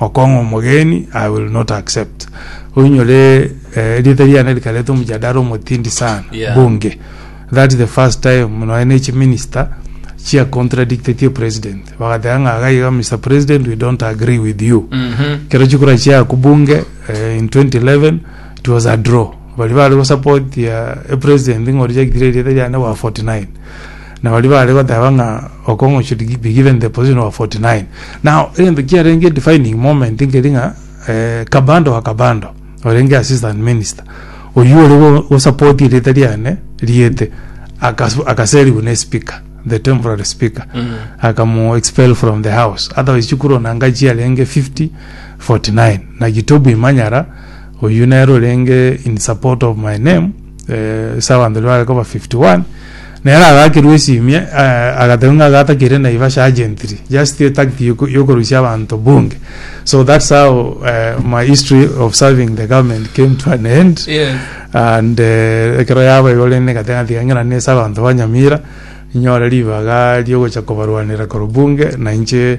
Okong'a omogeni, I will not accept. Oinyore eh, rieta riane rikareta omojadara omotindi sana Yeah. bunge. That the first time noe ne chiminister chia contradictetie president bagateba ng'a iga iga Mr President we don't agree with you. Mhm. Kero chikura chia kubunge eh, in 2011 it was a draw. Bali bari go support ya eh, president ngori jagitire rieta riane wa 49. Na baria baare goteba ng'a Okong'u should gi- be given the position of 49. Now, egento kiarenge defining moment nkeri ng'a eh, Kabando wa Kabando, orenge assistant minister, oyio ore go- gosupport erieta riane riete, akasu- akaserigwa ne speaker, the temporary speaker, akamu expel from the house. Otherwise chikura onanga chiarenge 50, 49. Na Gitobu Imanyara, oyio nere orenge in support of my name, eh, ase abanto ribare koba 51 nere agakerwa esimia eh, agateba ng'a agatakire naivasha agentry just etagti yoko- yokorusia abanto bunge so that's how eh, my history of serving the government came to an end Yes. and eh, ekero yaba igo rende gatena tiga ng'ina nese abanto ba nyamira nyore ribaga riogocha kobarwanera korwa bunge na inche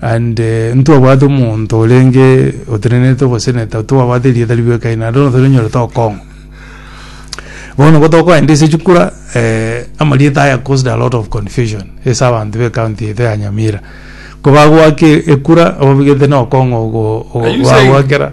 And ntwabwate omonto orenge otenenete oboseneta twabwate erieta ribe ekai naende bono toranyore tokong'wa bono nigo tokoenda ase chikura eh, amarieta aya caused a lot of confusion ase abanto be county yaito ya nyamira ko bagwake ekura obabigete nokong'o ogo ogo Are you saying- bagwakera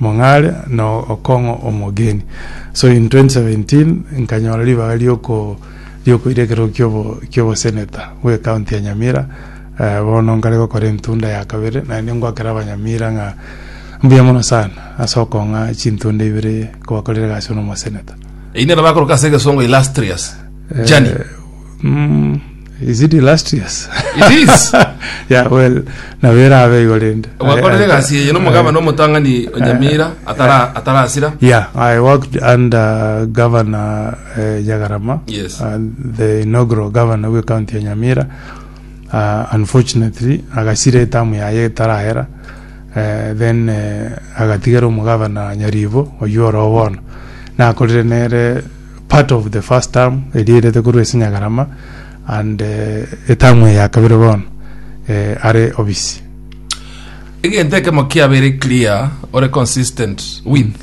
Mong'are na okong'o omogeni. So in 2017 nkanyora ribaga rioko riokoira ekerogo kiobo kiobo senator bwe county ya Nyamira eh, bono nkare gokora entunda ya kabere naende ngwakera abanyamira ng'a mbuya mono sana ase okong'a chintunda ibere kobakorera egasi buna omoseneta. Eyio nero bakoroka ase egesongo illustrious journey. Eh, mm, Is it illustrious? It is. yeah, well, nabo erabe igo rende. Gwakorire egasi eye nomogabana omotang'ani o Nyamira atara- atarasira. Yeah, I worked under Governor uh, Nyagarama, Yes. uh, the inaugural governor we county ya Nyamira. Uh, unfortunately, agasira etamu yaye etarahera. Uh, then uh, agatigera omugavana Nyaribo oyuoro bono. Nakorire nere part of the first term eria erete korwa ase Nyagarama and eh, etamu eye ya kabere bono eh, are obisi. egento ekemo kiabeire clear ore consistent with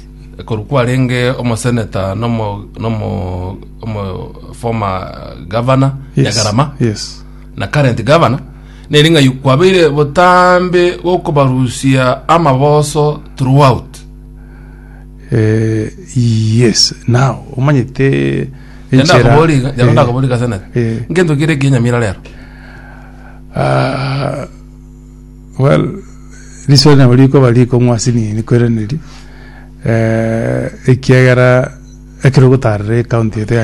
koru kwarenge omoseneta nomo nomo omo former governor Yes, nyagarama yes. na current governor neri ng'a yu- kwabeire botambe gokobarusia amaboso throughout Eh, yes now omanyete enchera Yandakoboriga, eh, yandakoboriga ase naki. eh, Ngento kere ekenyamira rero. ah, well riswali nabo rikoba rikong'wa ase nini kweraneri eh, ekiagera ekero ogotarera ekaunti eto ya